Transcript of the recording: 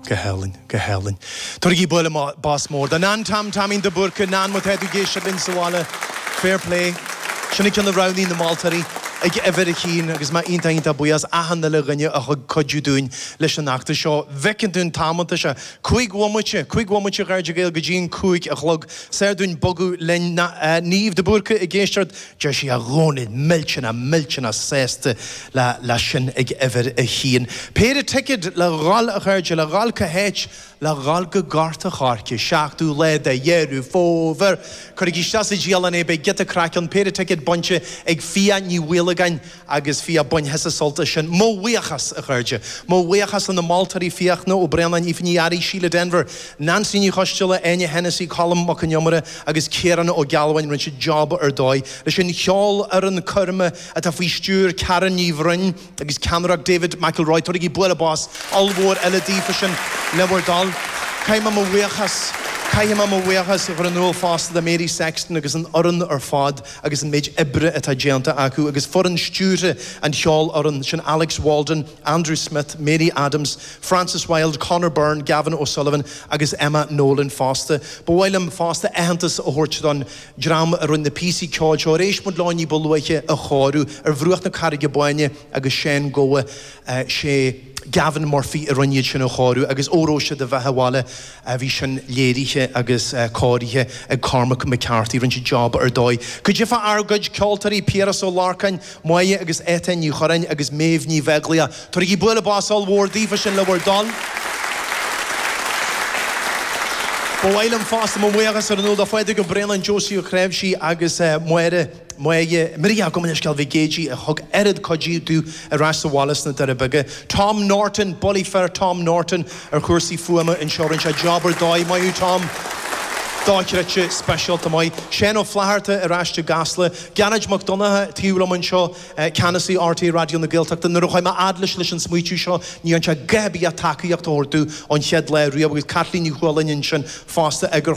Go hálainn, go hálainn. Tabhairigí bualadh bos mór do Nan Tom Taimín de Búrca, Nan má tá tú ag éisteacht linn sa bhaile, fair play. Sin an ceann a roghnaigh na moltóirí ag uimhir a haon agus mé iontach iontach buíoch as achan uile dhuine a thug cuidiú dúinn leis an fheachtas seo. Bhfeiceann tú an t-am atá sé, cúig bhomaite, cúig bhomaite a chairde Gael go dtí an cúig a chlog. Is fhearr dúinn bogadh linn. Niamh de Búrca ag éisteacht Deir sí a Dhónaill, millteanna, millteanna sásta leis sin ag uimhir a haon. Péire ticead le dhul, a chairde, le dhul cá háit? Le dhul go Gort a' Choirce, seachtú lá de Dheireadh Fómhair! Cuirigí isteach sa dialann é, beidh giota craic ann, péire ticead bainte ag Fiadh Ní Mhaolagáin, agus bhí a bainfidh sí sult as sin. Mo bhuíochas, a chairde. Mo bhuíochas le na moltóirí, Fiachna Ó Braonáin, Aoife Ní Fhearraigh, Síle Denvir, Neansaí Ní Choisdealbha, Áine Hensey, Colm Mac Con Iomaire agus Ciarán Ó Gealbháin rinne siad job ar dóigh leis an cheolfhoireann coirme atá faoi stiúir Karen Ní Bhroin agus ceannaireacht David McElroy. Tabhairigí bualadh bos ollmhór eile daofa sin le bhur dtoil. Caithfidh mé mo bhuíochas Caithfidh mé mo bhuíochas a chur in iúl fosta do Mary Sexton agus an fhoireann ar fad. agus an méid oibre atá déanta acu, agus foireann stiúrtha an cheolfhoireann, sin Alex Walden, Andrew Smith, Mary Adams, Frances Wilde, Conor Byrne, Gavin O'Sullivan agus Emma Nolan fosta. Ba mhaith liom fosta aitheantas a thabhairt don dream a rinne na píosaí ceoil seo, ar éist muid leo ní ba luaithe, a chóiriú, Ar Bhruach na Carraige Báine agus Seán Gabha, sé. Gavin Murphy a rinne iad sin a chóiriú agus óró sé do bheatha abhaile bhí sin léirithe agus cóirithe ag Cormac McCarthy rinne siad job ar dóigh. Go dtiofa ár gcuid ceoltóirí Piaras Ó Lorcáin, Máire agus Étáin Ní Churraoin agus Méabh Ní Bheaglaoich. Tabhairigí bualadh bos ollmhór daofa sin le bhur dtoil. Ba mhaith liom fosta mo bhuíochas a rá do Phádraig Ó Braonáin, Josie Ó Cnáimhsí agus Máire. Maige, Mairí gabh mo leithscéal Mhic Géidigh a thug oiread cuidiú domh ar ais sa bhaile sna Doirí Beaga. Tom Norton, bulaí fir Tom Norton ar chúrsaí fuaime anseo. Rinne sé job ar dóigh. Maith thú Tom. Dochreidte speisialta maith. Seán Ó Flatharta ar ais i gCasla. Gearóid Mac Donncha taobh liom anseo, Ceannasaí RTÉ Raidió na Gaeltachta. Nuair a chuaigh mé a fhad leis leis an smaoitiú seo ní dhearn sé a dhath ar bith ach tacaíocht a thabhairt domh ón chéad lá riamh agus Caitlín Ní Chualáin ansin fosta,